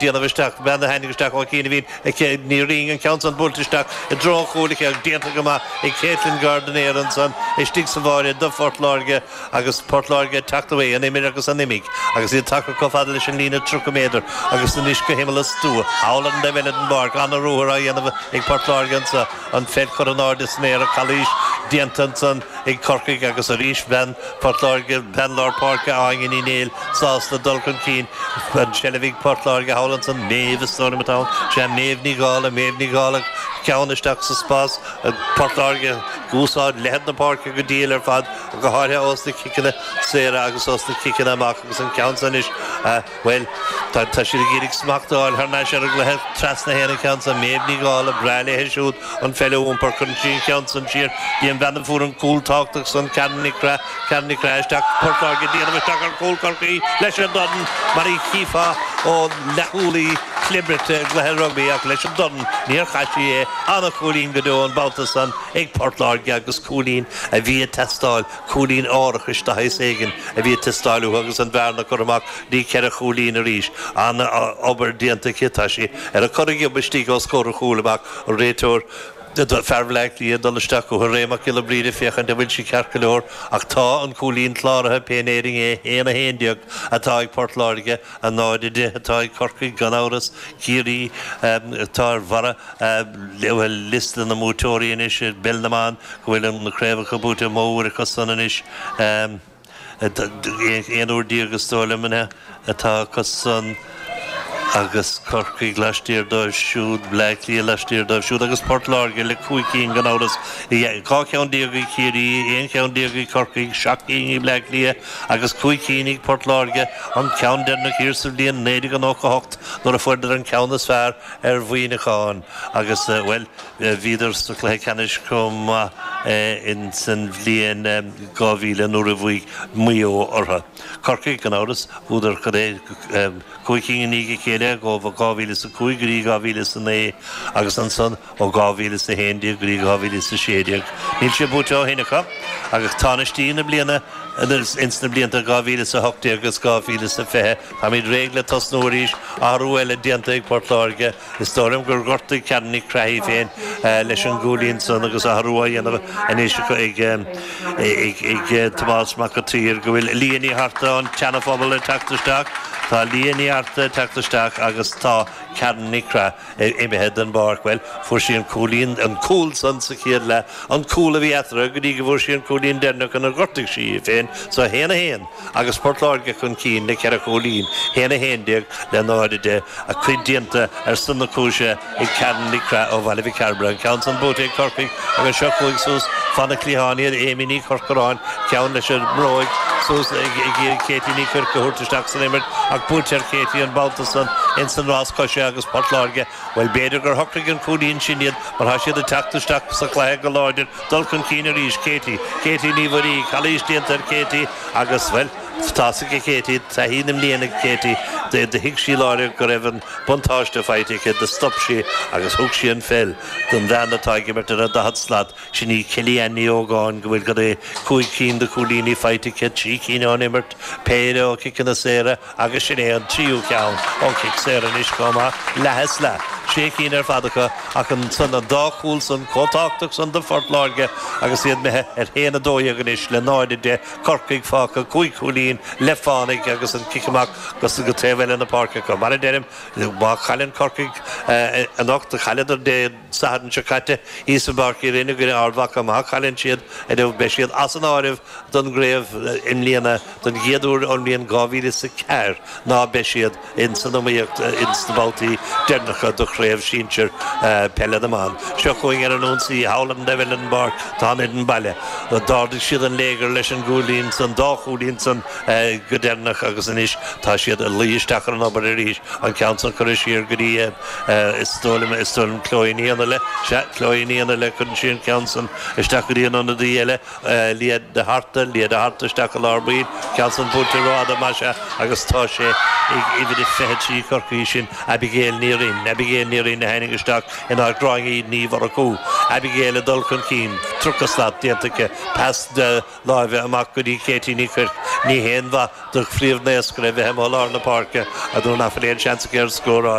déanamh isteach, bean a tháinig isteach ó chianaibhín, ach an ceann san buailte isteach i dtreo an chúil ach é déanta go maith ag Caitlin Gardenier ansan istigh sa bháire do Phort Láirge agus Port Láirge ag teacht a héis an imir agus an imigh agus iad tagtha comh fada leis an líne tríocha méadar agus anois go himeall a stua, ar an dtaobh eile den bpáirc, an-ruathar á dhéanamh ag Port Láirge anso. An pheil curtha in airde san aer calaois, déanta ansan ag Corcaigh agus arís bean Phort Láirge, bean lár páirce Áine Ní Néill sásta le dul chun cinn. An tseilbh ag Port Láirge thall ansan, Méabh is dóigh liom atá ann. Sea, Méabh Ní Dhálaigh, Méabh Ní Dhálaigh ceann isteach sa spás. Port Láirge ag úsáid leithead na páirce go diail ar fad, go háirthe ós na ciceanna saora agus ós na ciceanna amach agus an ceann san anois. Bhuel, tá siad ag iarraidh smacht a fháil thar n-ais ar an gcluiche trasna fén gceann san. Méabh Ní Dhálaigh, breá léi siúd an pheil a iompar, cuireann sí an ceann san siar go dtí an bhean a fuair an cúl tábhachtach san, Karen Nic Craith. Karen Nic Craith isteach go Port Láirge ag déanamh isteach ar chúl Chorcaí leis an dorn, mar a chífeá ón leathchúlaí clibirte i gcluiche rugbaí, ach leis an dorn níor chaith sí é. An-chúilín go deo an babhta san ag Port Láirge agus cúilín a bhí ag teastáil Cúilín árachais de shaghas éigin a bhí ag teastáil uathu agus an bhearna curtha amach go dtí ceithre chúilín arís. An-obair déanta acu, tá sí ar a corraghiob istigh os comhair an chúil amach. An réiteoir, fear Bhleá Cliath, ag dul isteach chucu, Ray Mac Giolla Bríde, féachaint an bhfuil sí ceart go leor. Ach tá an cúilín cláraithe, pé in Éirinn é. 1-11 atá ag Port Láirge. 0-10 atá ag Corcaigh gan amhras, Ciarraí atá ar bharra liosta na mbuaiteoirí anois i bpeil na mban go bhfuil na craobhacha buaite mó uair acu san anois, 11 uair is dóigh liom atá acu san, agus Corcaigh laistiar díobh siúd, Bleá Cliath laistiar díobh siúd agus Port Láirge le cúig cinn gan amhras. 12 cheann ag Ciarraí, 11 cheann ag Corcaigh, seacht gcinn ag Bleá Cliath, agus cúig cinn ag Port Láirge, an ceann deireanach thiar sa bhliain 1998 nuair a fuaireadar an ceann is fearr ar Mhuineacháin agus, bhuel, bhíodar sa chluiche ceannais chomh maith insan bhliain 2000 nuair a bhuaigh Maigh Eo orthu. Corcaigh, gan amhras, bhuadar, cad é, cúig cinn i ndiaidh a chéile ó 2005 go dtí 2009 agus ansan, Ó 2011 go dtí 2016 níl sé buaite ó shin acu agus tánaistí na bliana, ins na blianta 2018 agus 2020. Táimid réidh le tosnú arís. Athrú eile déanta ag Port Láirge. Is dóigh liom gur ghortaigh Karen Nic Craith í féin leis an gcúilín san agus athrú á dhéanamh anois acu a Thomáis Mhic an tSaoir go bhfuil Lia Ní Arta ón tSeanaphobal ag teacht isteach. Tá Lia Ní Arta ag teacht isteach agus tá Karen Nic Craith. imithe den bpáirc. Bhuel, fuair sí an cúilín, an cúl san sa chéad leath, an cúl a bhí eatarthu go dtí go bhfuair sí an cúilín deireanach inar ghortaigh sí í féin. So a haon a haon agus Port Láirge chun cinn le ceithre chúilín, haon a haon déag le náid a deich. A cuid déanta ar son na cúise ag Karen Nic Craith ó Bhaile Mhic Cairbre. An ceann san buaite ag Corcaigh. Agus seo chugainn suas fan na cliatháin iad, Amy Ní Chorcoráin, ceann leis an mbróig, suas ag iarraidh Katie Ní Chuirc a thabhairt isteach san imirt, ach buaitear Katie an babhta san ins an rás coise agus Port Láirge, bhuel, b'fhéidir gur shocraigh an cúilín sin iad mar tá siad ag teacht isteach sa chluiche go láidir, dul chun cinn arís, Katie, Katie Ní Mhuirí, calaois déanta ar Katie agus, bhuel, Buntáiste ag Katie, taithí na mblian ag Katie, do thuig sí láithreach go raibh an buntáiste faighte aici, do stop sí agus thug sí an pheil don bhean atá ag imirt ar an daichead slat, sin í Kelly-Ann Ní Ógáin go bhfuil cad é cúig cinn de chúilíní faighte aici, trí cinn ón imirt, péire ó chiceanna saora agus sin é an tríú ceann ó chic saor anois chomh maith, leath is leath, sé cinn ar fad aici ach ansan an dá chúl san chomh tábhachtach san do Phort Láirge agus iad imithe ar haon a dó dhéag anois le 0, 10. Corcaigh fágtha cúig chúilín le fánaidh agus an cic amach go taobh eile na páirce acu. Mar a deirim, má chailleann Corcaigh anocht, do chailleadar Dé Sathairn seo caite thíos i bPáirc Uí Rinn i gcoinne Ard Mhacha, má chailleann siad inniu beidh siad as an áireamh don gcraobh i mbliana don gcéad uair ón mbliain 2004 ná beidh siad. ins an iomaíocht ins na babhtaí deireanacha de Chraobh Sinsear Peile na mBan. Seo chugainn ar an ionsaí thall an Devil in the Bard Tom Edden Baile. D'ardaigh siad an léigear leis an gcúilín san, an dá chúilín san go deireanach agus anois tá siad ag luí isteach ar an obair arís, an ceann san curtha siar go dtí is dóigh liom, is dóigh liom Chloe Ní Fhionnaile, sea, Chloe Ní Fhionnaile, cuireann sí an ceann san isteach go dtí an ionadaí eile. Lia de hArta, Lia de hArta isteach i lár baill. Ceann san buailte rófhada, muise, agus tá sé ag uimhir a 23 Chorcaí sin Abigail Ní Rinn. Abigail Ní Rinn a tháinig isteach in áit Gráinne Ní Mhurchú. Abigail ag dul chun cinn. Tríocha slat déanta aici. Pas láimhe amach go dtí Katie Ní Chuirc. Ní haon mhaith do phríomhnaoscaire a bheith amuigh i lár na páirce nuair nach bhfuil aon seans aici ar scóráil.